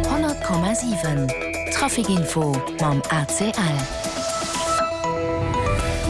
100,7 Traficinfo mam ACL.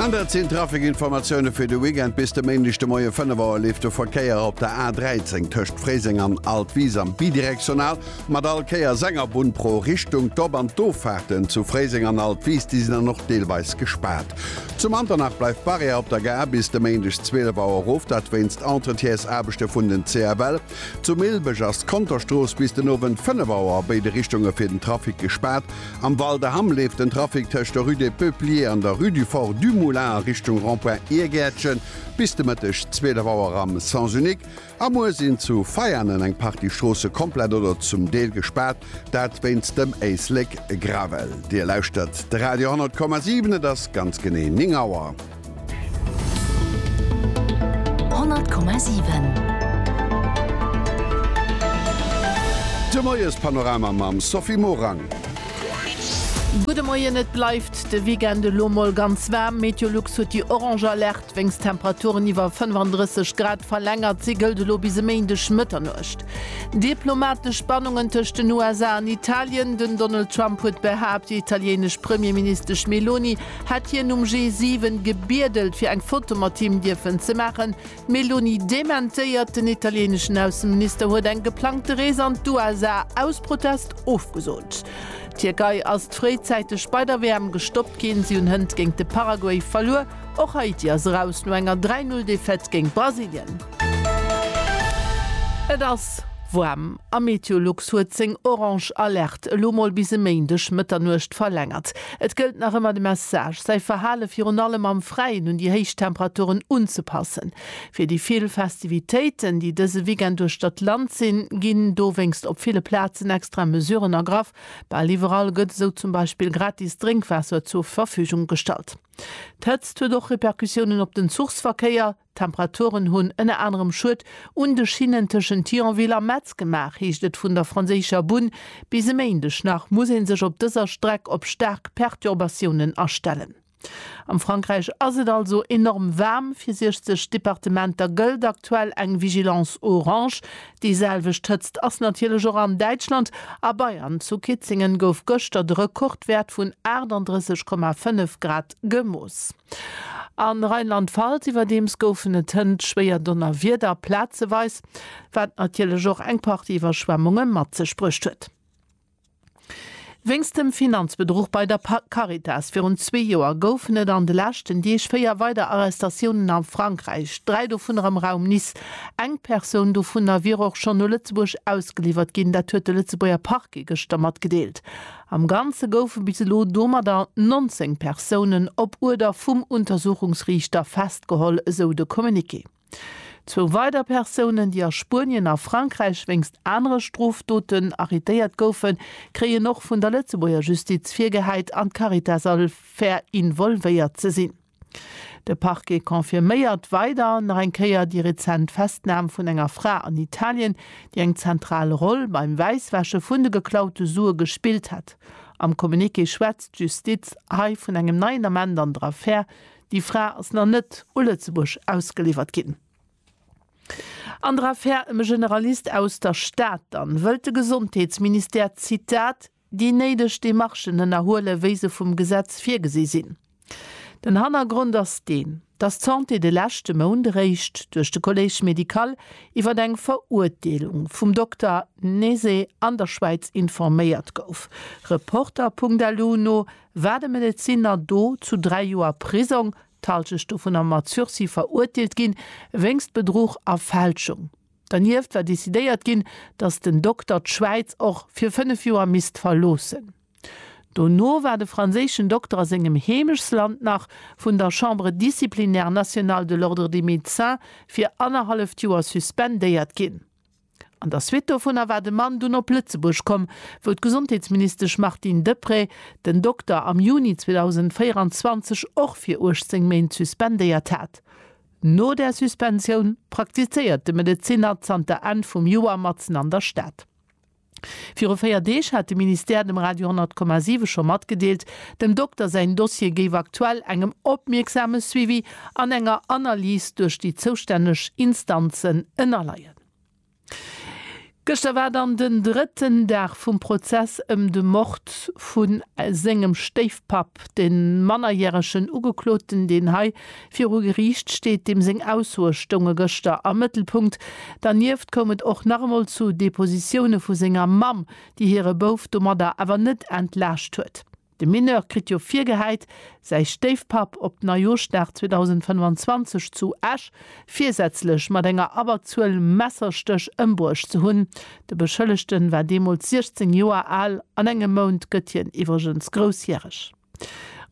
An dat sinn d'Traficinformatioune fir de Weekend. Bis de Méindeg de Moie 5 Auer leeft de Verkéier op der A13 tëscht Fréiseng an Altwisam bidirektional mat all Kéier senger Bunn pro Richtung. D'Op an d'Offaarten zu Fréiseng an Altwis, déi sinn dann och deelweis gespaart. Zu Manternach bleift d'Barrière op der Gare bis de Méindeg 12 Auer of, dat wéinst Entretiesarbechte vun den CFL. Zu Milbeg ass d'Konterstrooss bis den Owend 5 Auer a béide Richtunge fir den Trafic gespaart. Am Val de Hamm leeft den Trafic tëscht der Rue des Peupliers an der Rue du Fort du Moulin a Richtung Rond-point Iergäertchen bis de Mëtteg 12 Auer am Sens unique. A muer sinn zu Veianen eng Partie Stroosse komplett oder zum Deel gespaart, dat wéinst dem Éislek Gravel. Dir lauschtert de Radio 10,7, et ass ganz genee 9 Auer. De Moiespanorama mam Sophie Morang. Gudde Moien, Et bleift de Weekend elo mol ganz waarm. Meteolux huet déi orange Alerte wéinst Temperaturen iwwer 35 Grad verlängert. Si gëllt elo bis e Méindeg Mëtternuecht. Diplomatesch Spannungen tëscht den USA an Italien, Den Donald Trump huet behaapt, déi italieenesch Premierministesch Meloni Hätt hien um G7 gebiedelt fir eng Foto mat him dierfen ze maachen. D'Meloni dementéiert, den italieneschen Ausseminister huet eng geplangte Rees an d'USA aus Protest ofgesot. D'Tierkei ass fréizäiteg bei der WM gestoppt ginn, si hunn hënt géint de Paraguay verluer. Och Haiti ass eraus no enger 3 Null Defaite géint Brasilien. Et ass woarm a Meteolux huet seng orange Alerte elo mol bis e Méindeg Mëtternuecht verlängert. Et gëllt nach ëmmer de Message, säi Verhale virun allem am Fräien un déi héich Temperaturen unzepassen. Fir déi vill Festivitéiten, déi dëse Weekend duerch dat Land sinn, ginn dowéinst op ville Plazen extra Mesuren ergraff. Bal iwwerall gëtt esou zum Beispill gratis Drénkwaasser zur Verfügung gestallt. D'Hëtzt huet och Repercussiounen op den Zuchsverkéier. D'Temperaturen hunn ënner anerem Schued un de Schinnen tëschent Thionville a Metz gemaach, heescht et vun der franséischer Bunn. Bis e Méindeg nach muss ee sech op dëser Streck op staark Perturbatiounen astellen. Am Frankräich ass et also enorm waarm. Fir 60 Departementer gëllt aktuell eng Vigilance orange. Déi selwecht Hëtzt ass natierlech och an Däitschland. A Bayern, zu Kitzingen, gouf gëschter de Rekordwäert vun 38,5 Grad gemooss. A Rheinland-Pfalz iwwerdeems goufen et hënt schwéier Donnerwieder, plazeweis, wat natierlech och eng Partie Iwwerschwemmunge mat sech bruecht huet. Wéinst dem Finanzbedruch bei der Caritas virun zwee Joer goufen et an de leschten Deeg véier weider Arrestatiounen a Frankräich, dräi dovunner am Raum Nice. Eng Persoun dovunner wier och schonn no Lëtzebuerg ausgeliwwert ginn, dat huet de Lëtzebuerger Parquet gëschter matgedeelt. Am Ganze goufe bis elo domadder 19 Persounen op Uerder vum Untersuchungsriichter festgeholl, esou de Communiqué. Zwou weider Persounen, déi a Spuenien a Frankräich wéinst anere Strofdoten arretéiert goufen, kréien och vun der Lëtzebuerger Justiz virgehäit, an d'Caritas all ver involvéiert ze sinn. De Parquet confirméiert weider nach eng Kéier déi rezent Festnam vun enger Fra an Italien, déi eng zentral Roll beim Wäisswäsche vun de geklaute Sue gespillt hätt. Am Communiqué schwätzt d'Justiz hei vun engem neien Ament an der Affär. Déi Fra ass nach net u Lëtzebuerg ausgeliwwert ginn. An der Affär ëm e Generalist aus der Stad dann wëllt de Gesondheetsministère, Zitat, déi néideg Demarchen ënnerhuelen, wéi se vum Gesetz virgesi sinn. Den Hannergrond ass deen, dass d'Santé de leschte Mount eréischt duerch de Collège médical iwwer eng Verurteelung vum Dokter Nese an der Schwäiz informéiert gouf. Reporter.lu no war de Medezinner do zu dräi Joer Prisong, d'Halschecht dovunner mat Sursis, verurteelt ginn, wéinst Bedruch a Fälschung. Dernieft war decidéiert ginn, datt den Dokter d'Schwäiz och fir 5 Joer misst verloossen. Dono war de franséischen Dokter a sengem Heemechtsland nach vun der Chambre disciplinaire nationale de l'Ordre des médecins fir annerhalleft Joer suspendéiert ginn. An der Suite dovunner war de Mann dunn op Lëtzebuerg komm, wou d'Gesondheetsministesch Martine Deprez den Dokter am Juni 2024 och fir 18 Méint suspendéiert hat. No der Suspensioun praktizéiert de Medezinner zanter Enn vum Joer matzen an der Stad. Viru 4 Deeg hat de Ministère dem Radio 10,7 scho matgedeelt, dem Dokter säin Dossier géif aktuell engem opmierksame Suivi an enger Analys duerch déi zoustänneg Instanzen ënnerleien. Gëschter war dann den drëtten Dag vum Prozess ëm de Mord vu sengem Stéifpapp. De mannerjäregen Ugekloten, deen hei viru Geriicht steet, deem seng Aussoe stounge gëschter am Mëttelpunkt. Dernieft koum et och nach emol zu Depositioune vu senger Mamm, déi hire Bouf domadder awer net entlaascht huet. De Mineur kritt jo virgehäit, säi Stéifpapp op Neijooschdag 2025 zu Esch virsätzlech mat enger Abberzuel Messerstéch ëmbruecht ze hunn. De Beschëllegten war deemools 16 Joer al, an engem Mount gëtt hien iwwregens groussjäreg.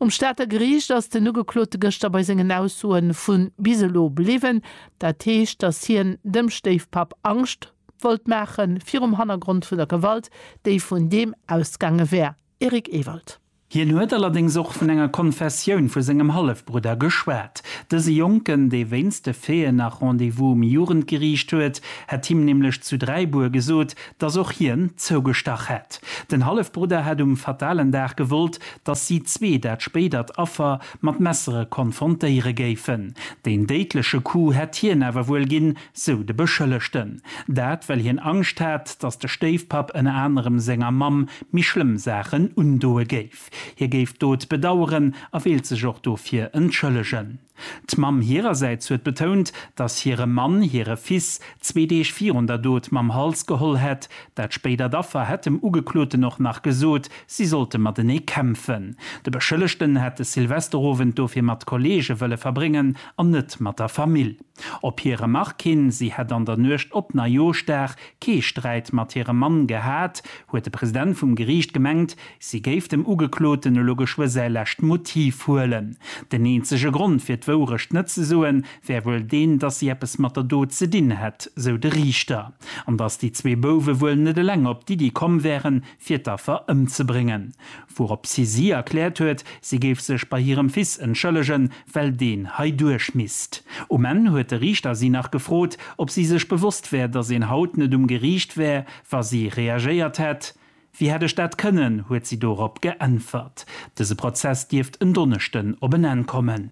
Um Stater Geriicht ass den Ugeklote gëschter bei sengen Aussoe vu bis elo bliwwen. Dat heescht, datt hien dem Stéifpapp Angscht wollt maachen, virum Hannergrond vun der Gewalt, déi vun deem ausgaange wär. Eric Ewald. Hien huet allerdéngs och vun enger Konfessioun vu sengem Hallefbrudder geschwat. Dëse Jonken, dee wéinst de Feeën nach Rendez-vous um Jugendgeriicht huet, hätt him nämlech zu Dräibuer gesot, datt och hien zougestach hätt. Den Hallefbrudder hätt um fatalen Dag gewollt, datt si zwee dat spéidert Affer mat Messere konfrontéiere géifen. Deen déidleche Coup hätt hien awer wuel ginn, Sou de Beschëllegten. Dat well hien Angscht hat, datt de Stéifpapp ënner anerem senger Mamm méi schlëmm Saachen undoe géif. Hie géif d'Dot bedaueren a wéilt sech och dofir entschëllegen. D'Mamm hirersäits huet betount, datt hire Mann hire Fils zwee Deeg virun der Dot mam Hals geholl hätt. Dat spéidert Affer hätt dem Ugekloten och nach gesot, si sollte matenee kämpfen. De Beschëllegten hätt de Silvesterowend dofir mat Kolleege wëlle verbréngen an net mat der Famill. Op hir Remark hin, si hätt an der Nuecht op Neijoschdag kee Sträit mat hirem Mann gehat, huet de President vum Geriicht gemengt, si géif dem Ugekloten elo geschwë säi lescht Motiv huelen. Den eenzege Grond fir d'Wourecht net ze soen, wär wuel deen, datt si eppes mat der Dot ze dinn hätt, sou de Riichter, an datt déi zwee Bouwe wuel net eleng op d'Iddi komm wären, fir d'Affer ëmzebréngen. Wouropshi si erkläert huet, si géif sech bei hirem Fils entschëllegen, well deen hei duerch misst. Um Enn huet de Riichter si nach gefrot, ob si sech bewosst wär, datt een haut net um Geriicht wär, wa si reagéiert hätt. Wéi hätt ech dat kënnen? huet si dorop geäntwert. Dëse Prozess dierft en Donneschden op en Enn kommen.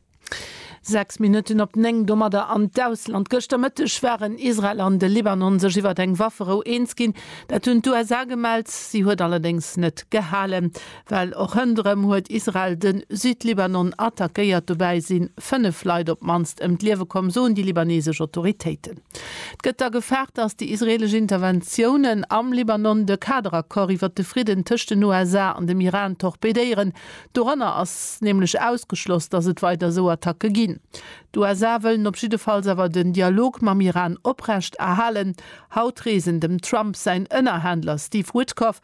Sechs Minutten op néng. Domadder an d'Ausland. Gëschter Mëtteg waren Israel an de Libanon sech iwwert eng Wafferou eens ginn. Dat hunn d'USA gemellt. Si huet allerdéngs net gehalen. Well och rënderëm huet Israel de Südlibanon attackéiert. Dobäi si 5 Leit op d'mannst ëm d'Liewe komm, soen déi libaneesesch Autoritéiten. Et gëtt da gefaart, datt déi israeelesch Interventiounen am Libanon de Kaderaccord iwwer de Fridden tëscht den USA an dem Iran torpedéieren. Doranner ass nämlech ausgeschloss, datt et weider esou Attacke ginn. D'USA wëllen op jiddefalls awer den Dialog mam Iran oprecht erhalen. Haut reesen dem Trump säin Ënnerhändler Steve Witkoff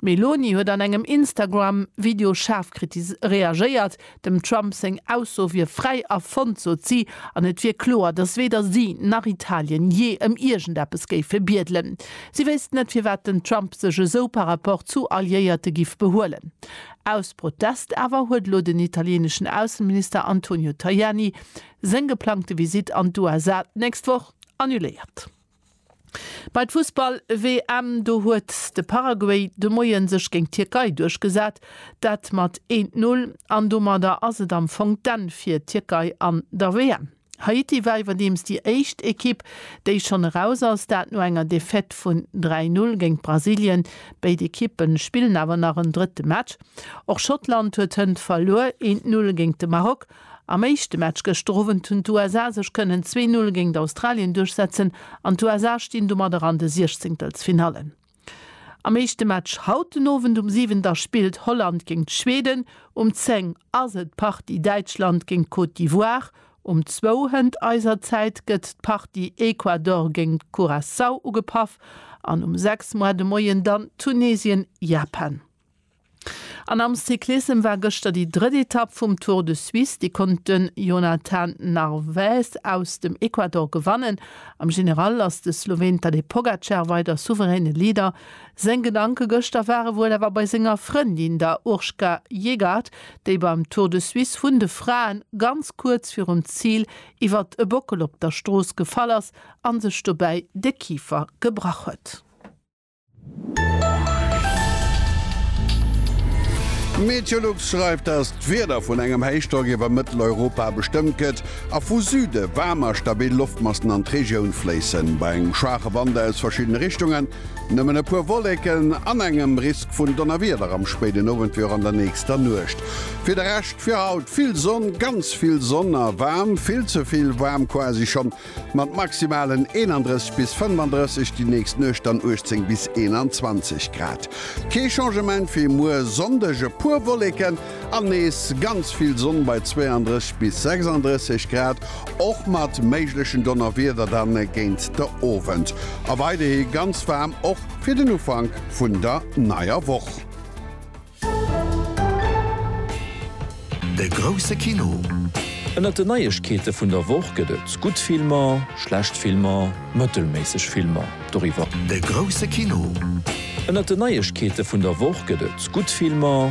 D'Meloni huet an engem Instagram Video schaarf reagéiert. Dem Trump seng Ausso wier fräi erfonnt, sot si, an et wier kloer, datt weder si nach Italien jee ëm iergendeppes géife biedelen. Si wéisst net, firwat den Trump sech esou par Rapport zu Alliéierte giff behuelen. Aus Protest awer huet elo den italieneschen Ausseminister Antonio Tajani seng geplangte Visitt an d'USA d'nächst Woch annuléiert. Bei d'Fussball-WM, do huet de Paraguay de Moie sech géint d'Tierkei duerchgesat, dat mat eent Null. An domadder ass et am Fong d'Enn fir d'Tierkei an der WM. Haiti war iwwerdeems déi éischt Ekipp, déi schonn eraus ass, dat no enger Defaite vun 3 Null géint Brasilien. Béid Ekippe spillen awer nach en drëtte Match. Och Schottland huet hënt verluer, eent Null géint de Maroc. Am éischte Match gëschter Owend hunn d'USA sech kënnen 2 Null géingt Australien duerchsetzen an d'USA stinn domadder an de Siechzéngtelsfinallen. Am éischte Match haut den Owend um 7 da spillt Holland géingt Schweden, um 10 ass et d'Partie Däitschland géingt Côte d'Ivoire, um 2 hënt eiser Zäit gëtt d'Partie Ecuador géingt Curaçao ugepaff an um 6 moar de Moien dann Tunesien-Japan. An am Cyclissem war gëschter déi drëtt Etapp vum Tour de Suisse. Déi konnt de Jonathan Narvaez aus dem Ecuador gewannen. Am General ass de Sloween Tadej Pogacar weider souveräne Leader. Seng Gedanke gëschter ware wuel awer bei senger Frëndin, der Urška Yegaert, déi beim Tour de Suisse vun de Fraen ganz kuerz virum Zil iwwert e Bockel op der Strooss gefall ass a sech dobäi de Kifer gebrach huet. Meteolux schreift, dass d'Wieder vun engem Héichdrock iwwer Mëtteleuropa bestëmmt gëtt a vu Süde waarm a stabil Loftmassen an d'Regioun fléissen, bei engem schwaache Wand aus verschiddene Richtungen. Nëmmen e puer Wolleken an engem Risk vun Donnerwieder am spéiden Owend wéi och an der nächster Nuecht. Fir de Rescht fir haut vill Sonn, ganz vill Sonn a waarm, vill ze vill waarm quasi schonn. Mat maximalen 31 bis 35 déi nächst Nuecht dann 18 bis 21 Grad. Kee Changement fir muer Sonndeg, e puer Wolleken an nees ganz vill Sonn bei 32 bis 36 Grad, och mat méiglechen Donnerwieder dann géint de Owend. A weiderhi ganz waarm och fir den Ufank vun der neier Woch. De grousse Kino. Ënnert den Neiegkeete vun der Woch gëtt et gutt Filmer, schlecht Filmer, mëttelméisseg Filmer. Doriwwer. De grousse Kino. Ënnert den Neiegkeete vun der Woch gëtt et gutt Filmer,